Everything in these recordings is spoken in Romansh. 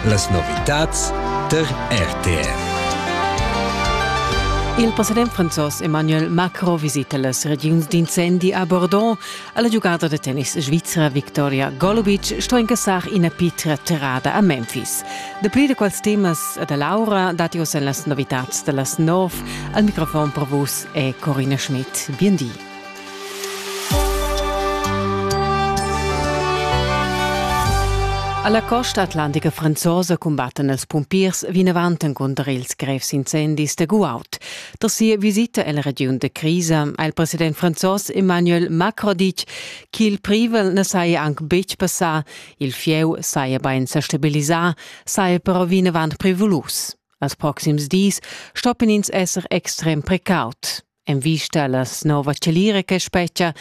Las novitads tar RTR. Il president franzos Emmanuel Macron visita las regiuns d'incendi a Bordeaux. La giugada da tennis svizra Victoria Golubic sto incassar ina pitra terrada a Memphis. Dapli da quels temas da Laura datti oz en las novitads da las nov. Al microfon per vus è Corina Schmidt. Bien di. Alla costa atlantica franzosa cumbattan els pumpiers vinavant encunter ils grevs incendis da Guaut. Tras sia visita alla regiun de crisa ha il president franzos Emmanuel Macron ditg ch'il privel ne saja anc betg passà, il fieu saja bain sa stabilisà, saja però vinavant prevolus. Als proxims dis stoppin ins esser extrem precaut. En vista alla nova chalira che spetga,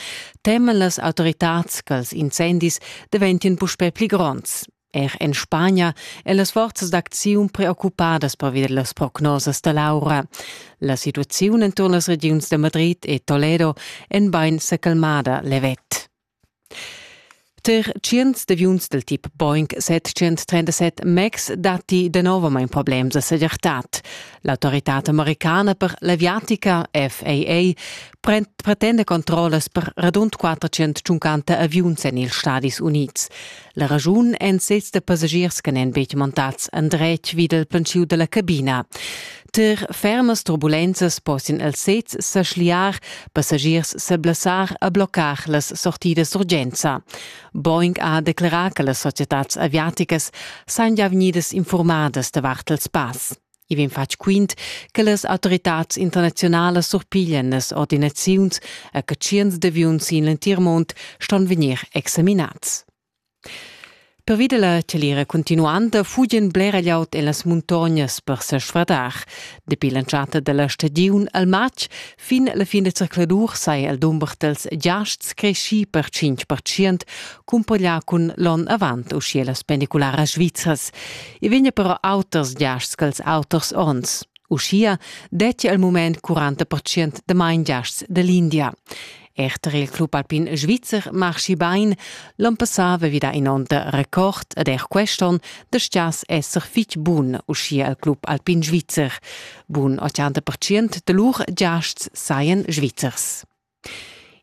teman las autoritads ch'ils incendis deventien puspè pli gronds. Er en Spagna è las forzas d'acziun preoccupadas pervia las prognosas da Laura. La situaziun enturn las regiuns de Madrid e Toledo è bain s'accalmada levet. Ter tschients d'aviuns dal tip Boeing 737 MAX datti danovamain problems a segirtad. L'autoritad americana per l'aviatica FAA pretenda controllas per radund 450 aviuns en ils Stadis Unids. La raschun èn sezs da passagiers che n'èn betg montads endretg vid il penschiu dalla cabina. Tar fermas turbulenzas possian els sezs sa schliar, passagiers sa blessar e bloccar las sortidas d'urgenza. Boeing ha declerà che las societads aviaticas sajan gia vegnidas informadas davart il spass. I vegn fatg quint che las autoritads internaziunalas surpiglian las ordinaziuns e che tschients d'aviuns sin l'entir mund ston vegnir examinats. Pervi della celira continuanta fugen bler glieud en las muntognas per sesfradar. Dapi l'entschatta della stagiun al matg Fin la fin da circladur saja il dumber dals giasts creschì per 5 percent, cumpareglià cun l'onn avant, uschia las pendicularas svizras. I vegnia però auters giasts ch'els auters onns. Uschia dettia il mument 40 percent damain giasts da l'India. Er tar il club alpin svizzer marschi bain. L'onn passà vevida in'onda record ed er quest'onn dastgias esser fitg bun uschia al club alpin svizzer. Bun 80% da lur giasts sajan svizzers.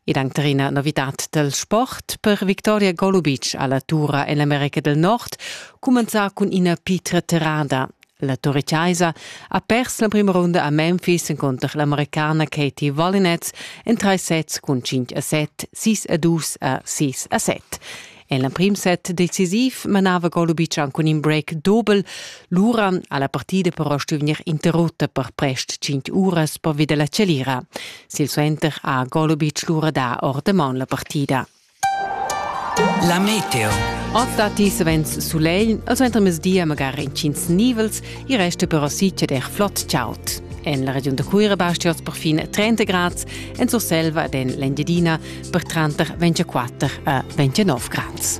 Ed anche una novità del sport per Victoria Golubic alla Tura en l'America del Nord commenza con una pietra terrada. La Torre Chiesa ha pers l'emprima runda a Memphis encunter l'americana Katie Valinets en trais sets cun 5 a 7, 6 a 2 a 6 a 7. En l'emprim set decisiv manava Golubic cun in break dobel. Lura ha la partida però stuì interrutta per prest 5 uras pervi da la chalira. Silsuenter ha Golubic lura dà ord maun la partida. La meteo. Ot datti savens sulegl, al suentermezdi magari intgins nivels, i resta però sitge der flott chaud. En la regiun da Cuira bastia per fin 30 grads, en Surselva ed en l'Engiadina per tranter 24 a 29 grads.